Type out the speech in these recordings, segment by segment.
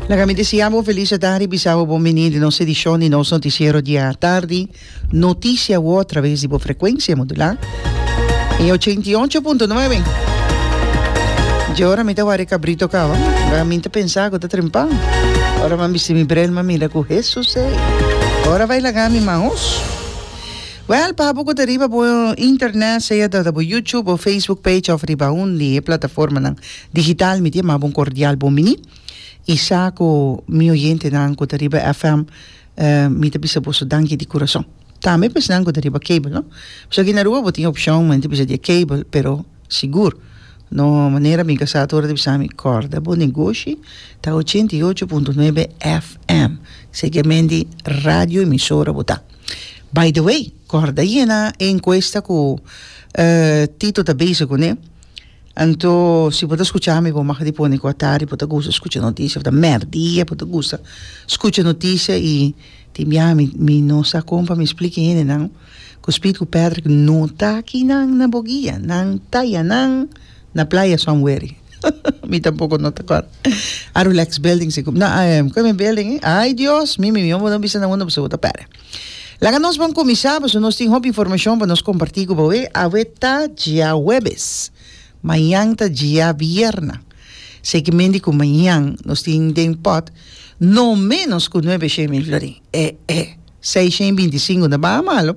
Laga mi deseá bo felis atari, bisa bo bon bini di nos edishon di nos notisiero di atardi, Notisia Word traves di bo frekuensia modulá e ochenta i ocho punto nuebe. Dje ora mi ta wari kabrito kaba, laga mi ta pensá ku ta trempá. Ora mi a bisti mi brel mi a mira ku Hesus ei, ora bai laga mi man hos. Wèl, pa abo ku ta riba bo internet, sea ta bo YouTube o Facebook page òf riba un di e plataformanan. Digital mi dia maba un cordial bon mini y sa cu mi oyentenan cu ta riba FM mi ta bisa boso danki di curason tambe pa esnan cu ta riba cable no pasobra aki na Aruba bo tin opcion men ta bisa dia cable pero sigur no manera mi casa ato hora ta bisa mi corda bo negoshi ta ochenta y ocho punto nuebe FM seguiamendi radio emisora bo ta by the way corda aye na e encuesta cu Tito ta bezig cu ne. Anto si bo ta skucha mi bo mag di pone ku a tardi bo ta gusta skucha notisia ota mèrdia bo ta gusta skucha notisia i tin bia mi mi no sa kon pa mi spliki hendenan ku spiritu ku pèrdri ku no ta aki nan na bo guia nan ta yanan na playa somewhere mi tampoko no ta kòrda a relax building si ku na kue mi building ai Dios mi mi mi bo no bisa nan unda bo segur ta pèrdè. Laga nos bon kuminsá pasobra nos tin hopi informashon pa nos kompartí ku boe. Awe ta dia huebes, mañan ta dia bièrnè. Seguimenti ku mañan nos tin den pòt no ménos ku nuebe shen mil florin. E e seis shen binti sinku ta baha malu.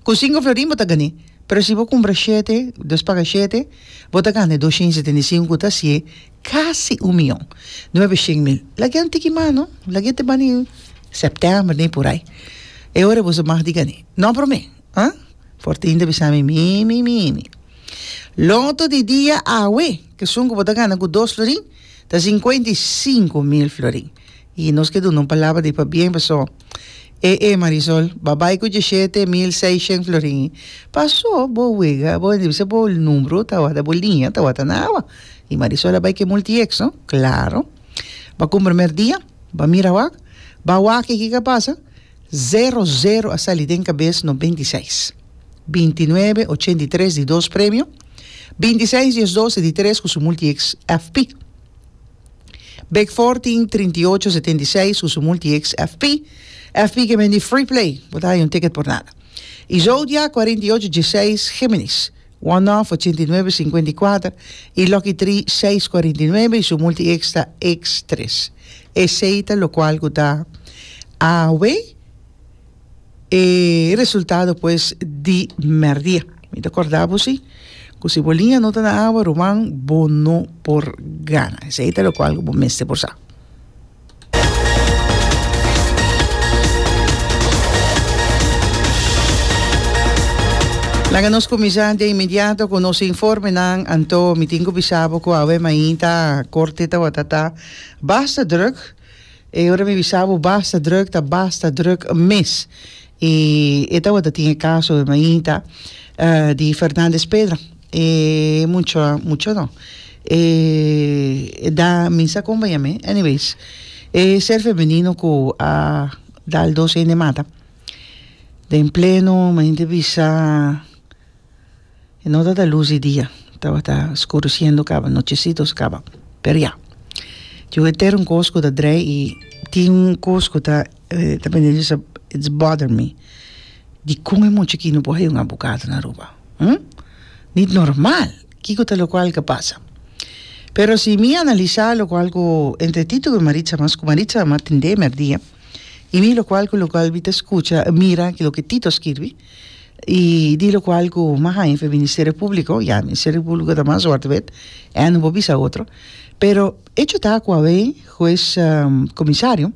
Ku sinku florin bo ta gan'é, pero si bo kumpra shete, dos paga shete, bo ta gana e dos shen setenta i sinku ku ta hasié Casi un mion. Nuebe shin mil. Lag'é un tiki mas, no? Lag'é te bani september ni por ay. E ora e boso mag di gané. No promé, ha? Fortin ta bisa mi, Mimi, Mimi, loto di dia awe, kesun ku bo ta gana ku dos florin, ta sinkuenta i sinku mil florin. Y nos ke duna un palabra di pabien paso e e Marisol ba bay cu diecisiete mil seiscientos florin y paso bo wega bo indi bisa bo numero tawata bo liña tawata na awa y Marisol a bay ke multi ex no claro ba cu primer dia ba mira wak ba waki kico a pasa zero zero a sali den cabes nos binti i seis binti i nuebe ochenta i tres di dos premio binti i seis di es doce di tres cu su multi ex FP. Bek for tin trinta i ocho setenta i seis su sumul ti ex FP. FP ke bendí free play, bo ta haya un ticket por nada. I Zodiac cuarenta y ocho dieseis Géminis, one off ochenta i nuebe cincuenta i kuater i Lucky three seis cuarenta i nuebe i sumul ti ex ta ex tres. Esei ta lokual ku ta awe. E resultado pues di merdia. Mi ta corda bo si cu si bo liña no ta na awa ruman bo no por gana. Esey ta locual cu bo mester por sa. Laga nos cuminsa de inmediato cu nos informenan anto mi tin cu bisa bo cu awe mainta corte tabata ta basta druk. E ora mi bisa bo basta druk ta basta druk mes. E e tabata tin e caso e mainta di Fernandez Pedra. E mucho mucho no e e da minsa acompaña mi anyways e ser femenino cu a dal dos hende mata den pleno mainta bisa E no tabata lus di dia, tabata skuresiendo caba, nochecitos caba. Pero ya, tin un etern cos cu ta drei y tin un cos cu ta it's bother me. Dicon e mucha aquí no por hayo un abogado na Aruba? Hm? Ni normal! Kico ta locual ke pasa? Pero si mi analisa locual cu entre Tito cu Maritza, mas cu Maritza a tende merdia, y mi locual cu locual mi ta scucha y mira loke Tito a skirbi, Y di locual cu mas haña fe Ministerio Público, ya, Ministerio Público ta mas suerte bet, e no por bisa otro. Pero hecho ta cu awe juez um, comisario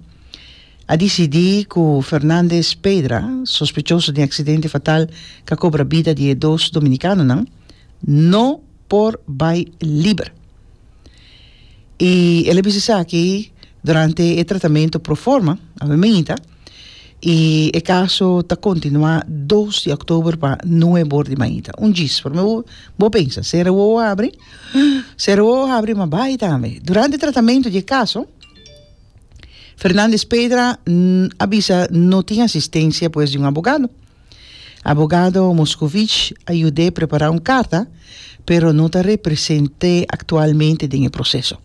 a decidi cu Fernandez Pedra, sospechoso den accidente fatal ca cobra bida di e dos dominicanonan, no por bay liber. I el a bisa esaki durante e tratamento proforma, a meminita, i e kaso ta kontinuá dos di oktober pa nue bor di mainta. Un djis, promé bo, bo pensa, sera wowo habri, sera wowo habri, ma bai tambe. Durante e tratamento di e kaso, Fernandez Pedra a bisa no tin asistensia pues di un abogado. Abogado Moscovic a yud'é prepará un karta, pero no ta represent'é aktualmente den e proseso.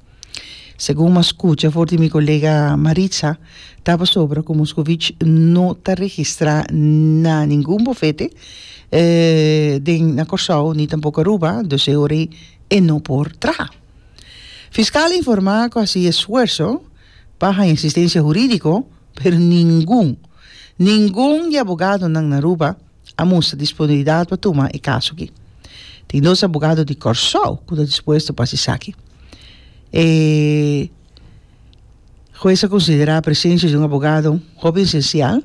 Segun m'a skucha for di mi kolega Maritza, ta pasobra ku Moscovic no ta registrá na ningun bufete den na Kòrsou ni tampoko Aruba, dus e ora ei e no por traha. Fiskal a informá ku a hasi esfuerso pa haña asistensia hurídiko, pero ningun ningun di abogadonan na Aruba a mustra disponibilidat pa tuma e kaso aki. Tin dos abogado di Kòrsou ku ta dispuesto pa hasi esaki. E hues a konsiderá presensia di un abogado hopi esensial,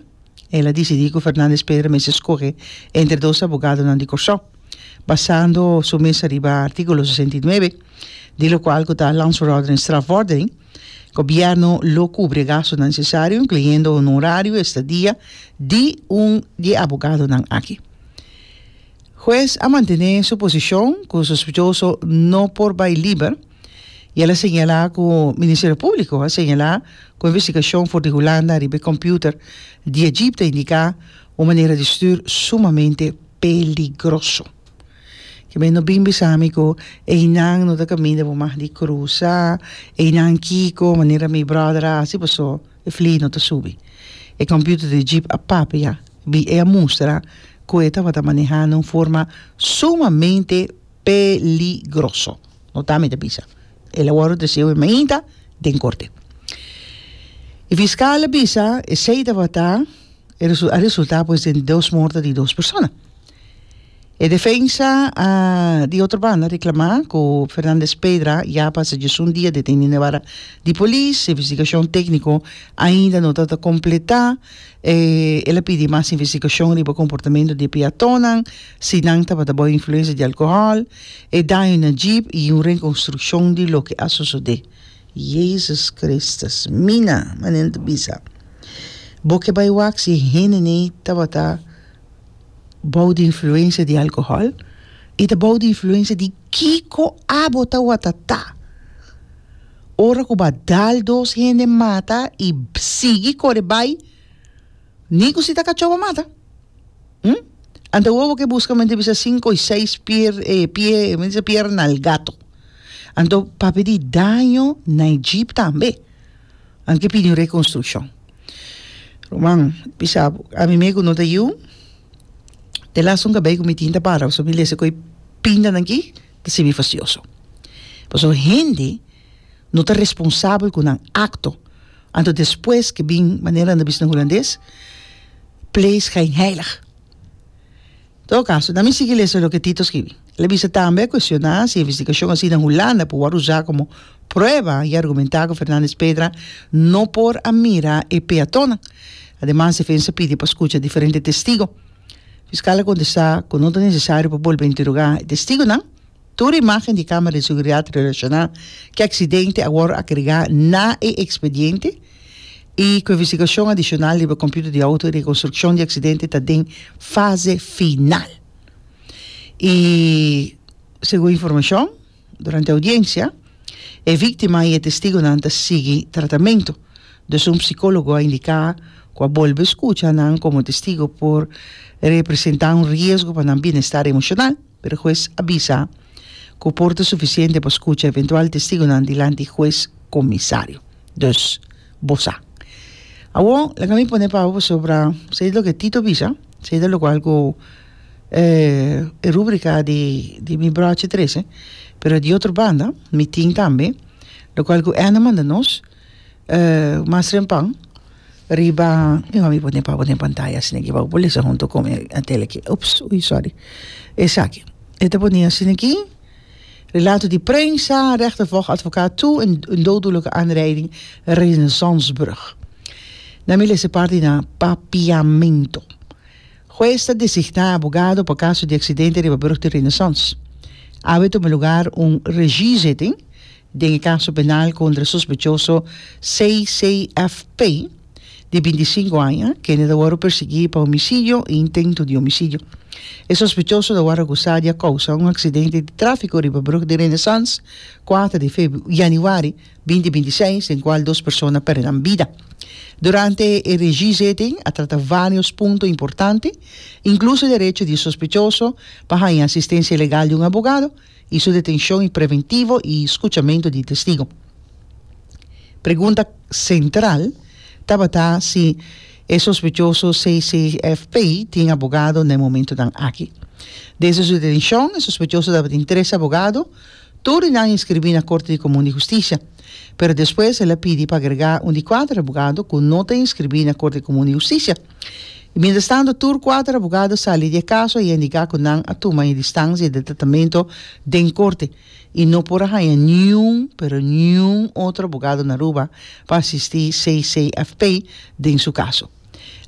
el a disidí ku Fernández Pedra mester skohe entre dos abogadonan di Kòrsou, basando su mesa riba artíkulo sesenta i nuebe, di lokual ku ta Landsverordening, Strafvordering, Gobierno lo cubri gasto nan necesario, incluyendo honorario, estadia di un di e abogadonan aki. Huez a mantene su posicion cu sospechoso no por bay liber y el a señala cu Ministerio Publico a señala cu investigacion for di Hulanda riba e computer di e jeep ta indica un manera di stuur sumamente peligroso. Kibe no bin bisa mi ku einan no ta kaminda bo mas di krusa, einan kiko manera mi bròder a hasi paso e flì no ta subi. E kòmpiuter di Jeep a papia, bi e a mustra ku e tabata manehá na un forma sumamente peligroso. No ta mi ta bisa, el a wòrdu treseu e mainta den korte. E fiskal a bisa esei tabata a resultá pues den dos morto di dos persona. E defensa a di otro banda reclama cu Fernandez Pedra ya pasa diesun dia deteni na e wara di polis, investigacion tecnico ainda no ta completa, e el a pidi mas investigacion riba comportamento di e peatonnan, si nan tabata bajo influencia di alcohol, e daño na jeep y un reconstruccion di loke a sosode. Jezus Christus mina! Manera ta bisa bo ke bai wak si e hende nei tabata Bou di influencia di alcohol? I ta bou di influencia di kico abo ta watatá? Ora cu bo a dal dos hende mata i sigui core bai, ni cu si ta cacho bo mata. Hm? Anto awor bo ke busca men ta bisa cinco i seis pier, eh, pie, men ta bisa pierna al gato. Anto papia di daño na e jeep tambe. Anto ke pidi un rekonstrukshon. Ruman, bisa bo, ami me ku no ta yu, e lasta un kabei ku mi tin ta para pasobra mi lesa ku e pintanan aki ta sibi fastioso. Pasobra hende no ta responsabel ku nan akto anto despues ke bin, manera nan ta bisa na hulandes, pleegschijnheilig. Todo caso, na mi sigui lesa loke Tito scribi. El a bisa tambe a cuestiona si e investigacion haci na Hulanda por word usa como prueba y argumenta cu Fernandez Pedra no por a mira e peatonnan. Ademas defensa a pidi pa scucha diferente testigo. Fiscal a contesta cu no ta necesario pa bolbe interroga e testigonan. Tur imágen di Cámara di Seguridad relashoná ku e aksidente a wòrdu agregá na e ekspediente i ku e investigashon adishonal riba kompiuter di outo. E rekonstrukshon di aksidente ta den fase final i segun informashon durante e oudiensia e víktima i e testigunan ta sigui tratamentu. Dus un psikólogo a indiká ku a bolbe skucha nan komo testigo por representá un riesgo pa nan bienestar emoshonal. Pero hues a bisa cu por ta suficiente pa scucha eventual testigonan dilanti hues comisario. Dus, bo sa. Awor, laga mi pone paba pasobra se'ida loke Tito bisa, se'ida locual cu eh, e rubrica di, di mi brochi trece, pero di otro banda, mi tin tambe, locual cu Anne manda nos, eh mas rempan riba mi mami pone pa pone pantaya asina ki bou bolesa hunto con e a tele ki ups ui sorry esaki e ta pone asina ki relato di prensa rechter volg advocaat toe en een dooddoelijke aanrijding Renaissancebrug na mi lesa parti na papiamento hues ta designa abogado pa caso di accidente riba brug di Renaissance awe tuma lugar un regiezitting den e kaso penal kontra sospechoso CCFP, di binti i sinku aña, kende ta wòrdu persiguí pa homisidio i intentu di homisidio. E sospechoso ta wòrdu akusá di a kousa un aksidente di tráfiko riba Brug di Renaissance kuater di yanüari binti binti i seis den kual dos persona pèrdè nan bida. Durante e regizetting a trata vários punto importante, inkluso e derecho di e sospechoso pa haña asistensia legal di un abogado, y su detencion y preventivo y scuchamento di testigo. Pregunta central tabata si e sospechoso CCFP tin abogado na e momentonan aki. Desde su detencion e sospechoso tabatin tres abogado, tur di nan inscribi na Corte di Comun di Husticia. Pero despues el a pidi pa agrega un di cuater abogado cu no ta inscribi na Corte di Comun di Husticia. I mientras tanto tur cuater abogado sali di e caso y a indica cu nan a tuma e distancia di tratamento den corte y no por a haya niun pero niun otro abogado na Aruba pa asisti CCFP den su caso.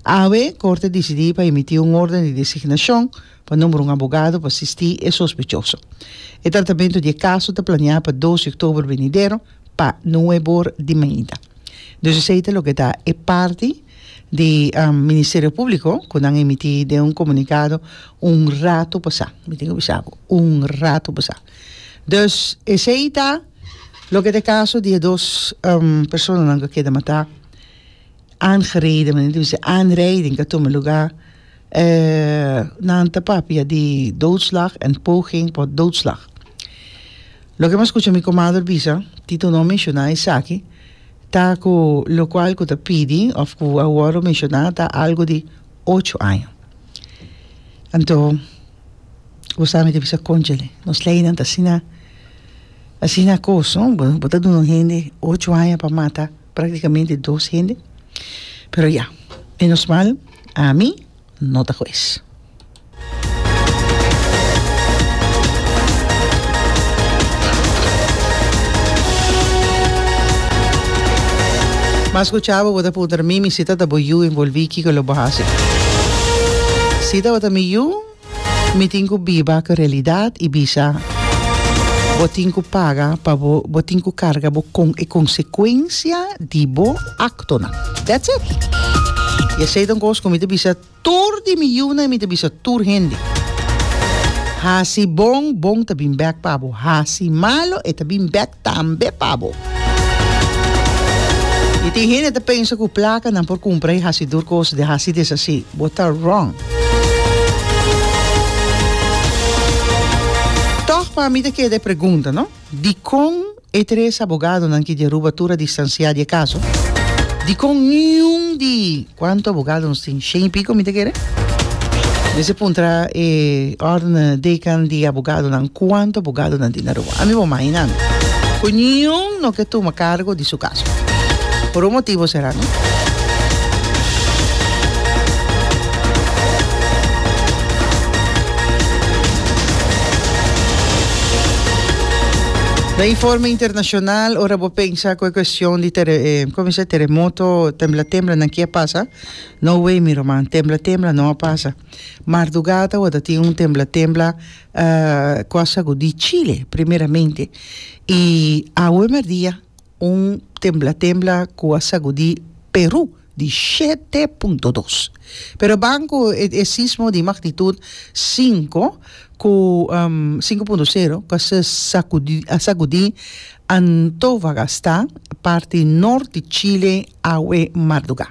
Awe corte a dicidi pa emiti un orden di designacion pa nombra un abogado pa asisti e sospechoso. E tratamento di e caso ta planea pa dos di october venidero pa nuebe or di mainta. Dus esey ta loke ta e parti di Ministerio Públiko ku nan emití den un komunikado un ratu pasá, mi tin ke bisa bo, un ratu pasá. Dus esei ta loke ta e kaso di e dos personanan ku a keda matá, aangereden, men a bisa aanrijding, ku a tuma lugá, nan ta papia di doodslag en poging tot doodslag. Loke mi a skucha mi komadre bisa, Tito no a menshoná esaki. Ta cu locual cu ta pidi of cu a worde menciona ta algo di ocho aña. Anto bo sa mi ta bisa conchale nos leynan ta asina asina cos no bo ta duna un hende ocho aña pa mata practicamente dos hende pero ya menos mal ami no ta hues. Mas cu chabo bo ta puntra mi, mi sita ta bo yu envolvi kico lo bo haci. Si tabata mi yu, mi tin cu biba cu realidad y bisa bo tin cu paga pa bo, bo tin cu carga bo con e consecuencia di bo ac. Tona. That's it. Y esey ta un cos cu mi ta bisa tur di mi yiunan y mi ta bisa tur hende. Haci bon, bon ta bin bek pa bo. Haci malo, e ta bin bek tambe pa bo. Y tin hende ta pensa cu placa nan por cumpra y haci tur cos di haci deshaci. Bo ta wrong. Toch pa mi ta keda e pregunta, no? Dicon E tres abogadonan ki deruba tur a distansiá di e kaso. Dikon niun di kuantu abogado nos tin? Shen i piko, mi ta kere. Mester a puntra e órden dekan di abogadonan kuantu abogado nan tin Aruba. Ami bo mahinami ku niun no ke tuma kargo di su kaso. Por un motibo será. Na informe internacional, ora bo pensa cu e cuestion di tere, eh, como dice, terremoto, tembla tembla, nan kia pasa? No way, mi roman, tembla tembla no a pasa. Mardugada wada tin un tembla tembla cu a sagudi Chile primeramente y awe merdia, Un tembla tembla ku a sagudí Perú di shete punto dos. Pero ban ku e sismo di magnitut sinku ku sinku punto sero ku a sagudí a sagudí Antofagasta, parti nort di Chile, awe mardugá.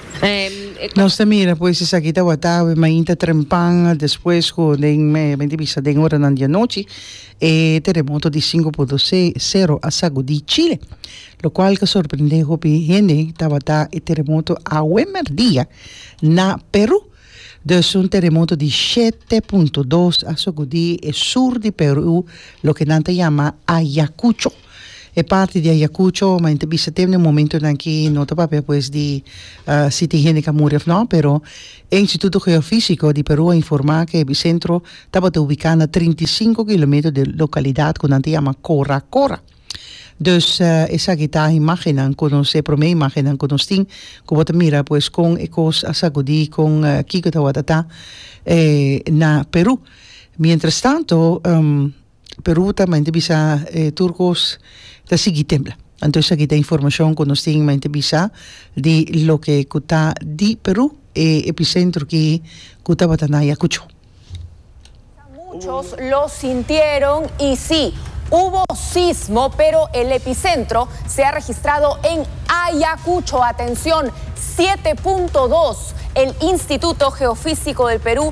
Nos ta mira pues esaki tawata awe mainta trempan despues cu den mente bisa den horanan di anochi e teremoto di sinku punto sero a sagudi Chile lo cual ta sorprende hopi hende tawata e teremoto awe merdia na Peru dus un teremoto di shete punto dos a sogudi e sur di Peru loke nan ta yama Ayacucho. E parti di Ayacucho, ma enta bisa tem den momentonan ki no ta papia pues di si tin hende ku a muri of no, pero e Instituto Geofisico di Peru a informa ku e ebicentro tabata ubiká na trinta i sinku kilometro di e lokalidat ku nan ta yama Cora Cora. Dus esaki ta imágennan ku nos, e promé imágennan ku nos tin, ku bo ta mira pues kon e kos a sakudí, kon kiko tabata ta na Peru. Mientrastanto, Peru ta main ta bisa e tur kos ta sigui tembla anto esaki ta informashon ku nos tin main ta bisa di loke ku ta di Peru e episentro ki ku tabata na Ayakucho. Kisa muchos lo sintieron y si, hubo sismo pero el epicentro se ha registrado en Ayacucho, atencion siete punto dos, el Instituto Geofísico del Perú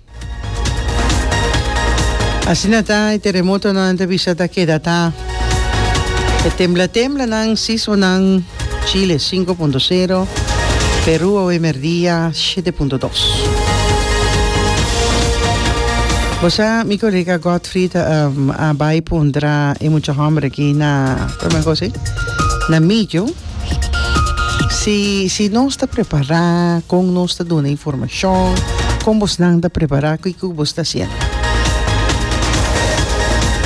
Asina ta e teremotonan nan ta bisa ta keda ta e tembla temblanan sismonan Chile sinku punto sero Peru awe merdia shete punto dos. Bo sa mi kolega Godfrid a bai puntra e mucha hòmber aki na kòmen kos e? na Mijo. Si si nos ta prepará kon nos ta duna informashon kon bosnan ta prepará kiko ku bos ta hasiendo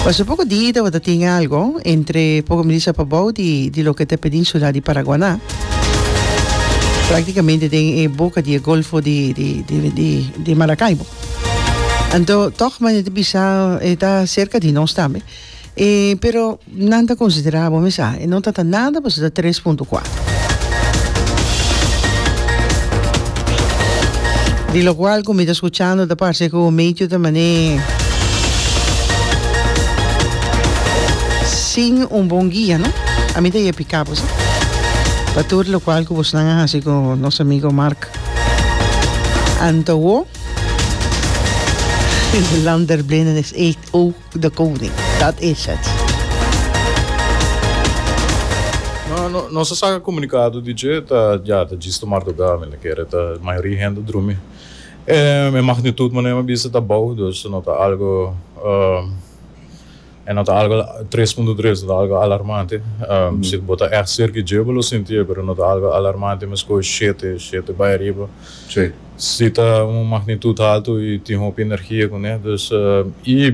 pasobra poko di tabata tin algo entre poko mi di sa pabou di loke ta e peninsula di Paraguaná praktikamente den e boka di e golfo di di Maracaibo anto tòg mane ta bisa e ta serka di nos tambe. E pero nan ta considera bo mes a e no tata nada pasobra ta tres punto cuatro. Di lo cual cu mi ta scuchando ta parce cu medio ta mane sin un bon guia no a mi ta yeh pica bo sa pa tur lo cual cu bos nan a haci cu nos amigo Marc Antawo Lander Blindenis H. O. de koning. Dat is het. No, nos a saka komunikado di dje ta ya, ta djis tomarduga, mi ta kere ta mayoria hende a drumi. E, e magnitud mane mi a bisa ta bou, dus no ta algo, e no ta algo tres punto tres, no ta algo alarmante. Si bo ta ègt serka dje bo lo sintié, pero no ta algo alarmante, mi a skohe shete, shete bai ariba. Si ta un magnitud haltu y tin hopi energia cune. Dus y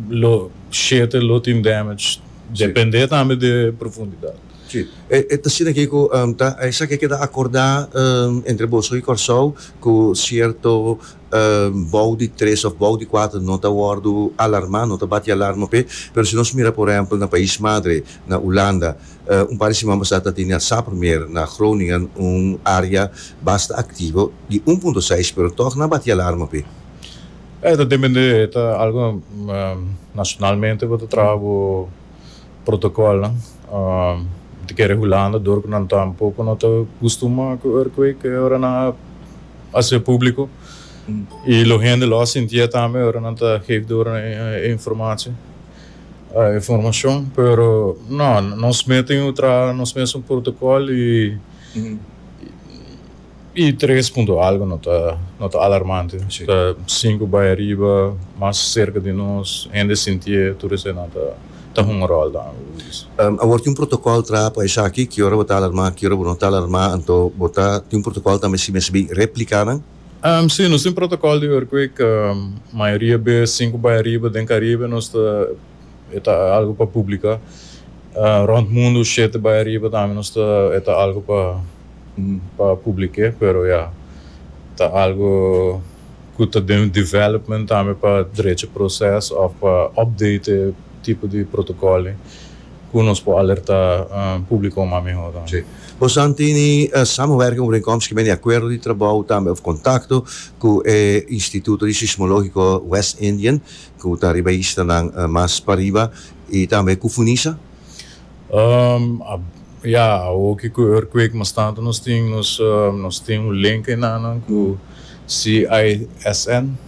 lo shete lo tin damage depende tambe de profundidad. Si, e ta asina ke ku ta esaki a keda akorda entre boso i Kòrsou ku sierto bou di tres òf bou di kuater no ta wòrdu alarmá, no ta bati alarma p'e. Pero si nos mira por ehèmpel na pais madre, na Ulanda, Un par di siman pasá ta tene asá promé na Groningen un área basta aktivo di un punto seis pero tòg nan bati alarma p'e. E ta dependé, e ta algu nashonalmente bo ta traha bo protokòlnan. Bo ta kere Hulanda dor ku nan ta un poko no ta kustumá ku earthquake e ora nan a hasié públiko. I lo hende lo a sintié tambe ora nan ta gevi dor e informashon. informacion pero no nos meten yu traha nos mes un protocol y y tres punto algo no ta no ta alarmante ta cinco bay ariba mas cerca di nos hende sintie tur esey nan ta ta hunga rol dan como bo dice. Awor tin un protocol traha pa esaki ki ora bo ta alarma ki ora bo no ta alarma anto bo ta tin un protocol tambe si mes bay replica nan? Sí, nos tin protocol di earthquake, mayoria bes sin cu bay ariba den Caribe nos ta, e ta algo pa publica. Rond mundo shete bay ariba tambe nos ta, e ta algo pa pa publique, pero ya ta algo cu ta den development tambe pa drecha proces of pa update e tipo di protocol ey. ku nos por alerta publiko mas mehor tambe. Bosan tin e samenwerking overeenkomst ku men di akuerdo di trabou tambe of kontakto ku e Instituto di Sismologiko West Indian ku ta riba e islanan mas pariba i tambe ku Funisa? Ya, awor ki ku e earthquake mas tantu nos tin nos tin un link enanan ku CISN.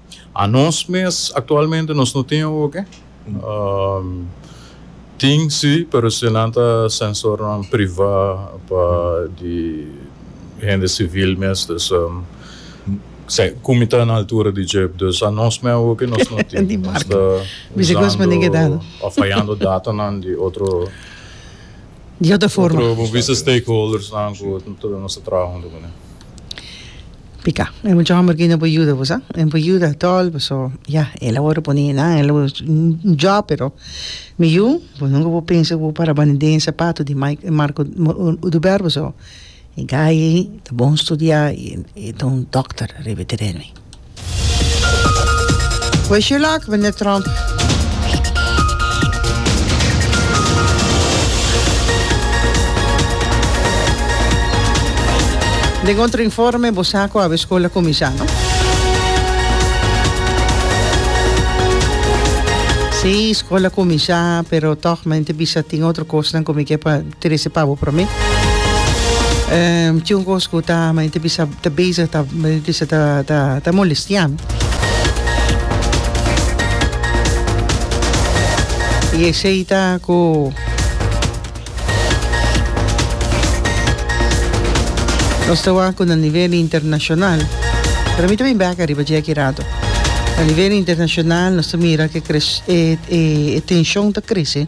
Anos mes aktualmente nos no tin oke. Tin si pero si nan ta sensornan privá pa di hende sivil mes dus ku mi ta na altura di dje dus anos mes oke nos no tin. Nos ta usando o fayando datanan di otro otro bo bisa stakeholdersnan ku nos ta traha huntu ku nan. Pika e mucha homber kina por yuda bo sa e por yuda tol paso ya el awor a pone nan el awor un job pero mi yu bo nunca por pensa ku bo para bani den e sapato di mai Marco oduber paso e guy ta bon studia i e ta un doctor riba e teren mi. Wish you luck meneer Trump. Den otro informe bo sa cu awe school a cuminsa no? Si, school a cuminsa pero tog men te bisa tin otro cosnan cu mi ke pa. Trece pa bo prome. tin un cos cu ta mi ta bisa ta bezig ta bisa ta ta ta molestiami y esey ta cu nos ta wak cu na nivel internacional pero mi ta bin bek ariba dje aki rato na nivel internacional nos ta mira que e e e tension ta crece.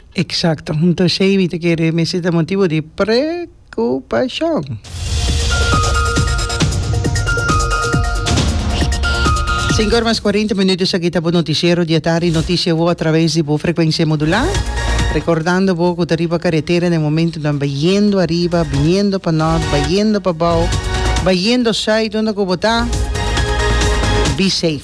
Exacto. Hunto Shavy ta kere mester ta motibo di preocupacion. Sinku ora mas kuarenta minuto esaki ta bo noticiero di e tardi noticia bo a traves di bo frecuencia modula. Recordando bo ku ta riba carretera den momentonan bayendo ariba biniendo pa nort bayendo pa bou bayendo site donde ku bo ta be safe.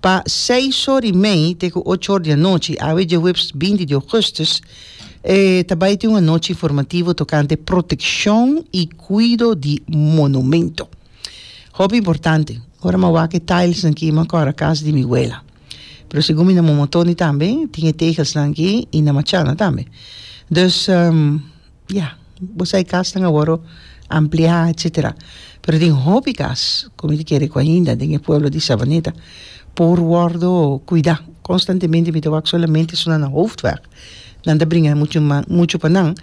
Pa seis or i mei te ku ocho or di anochi awe djahuebs binti di ougùstus e ta bai tin un anochi informativo tokante protekshon i kuido di monumentu. Hopi importante, ora mi a wak e tailsnan ki mi a kòrda kas di mi wela. Pero segun mi na Momotoni tambe tin e tegelsnan ki i na Machana tambe. Dus, Ya, bo sa e kasnan a wòrdu ampliá etsetera. Pero tin hopi kas ku mi ta kere ku ainda den e pueblo di Savaneta por wòrdu kuidá. Konstantemente mi ta wak solamente so na nan hoofdweg. Nan ta bringa muchu ma muchu pa nan,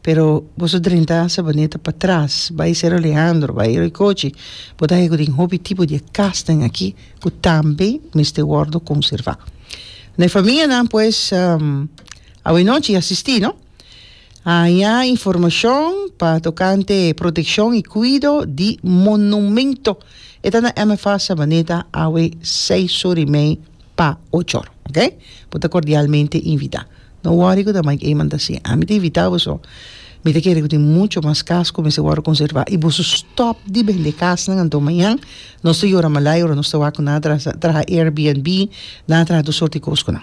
pero bo so drenta Savaneta pa tras, bai Cerro Leandro, bai Ricochi, bo ta haña ku tin hopi tipo di e kasnan aki ku tambe mester wòrdu konservá. Na e famianan pues, awor e nochi a asistí, no? Haña informashon pa tokante protekshon i kuido di monumentu. E ta na MFA Sabaneta awe seis surimei pa ochor. Ok? Bo ta kordialmente invitá. No wòri ku ta Mike Eman ta si, ami ta invitá boso. Mi ta kere ku tin muchu mas kas ku mester wòrdu konservá. I boso stòp di bende kasnan anto mañan. Nos ta yora malai ora nos ta wak ku nan a traha Airbnb, nan a traha tur sort di kos ku nan.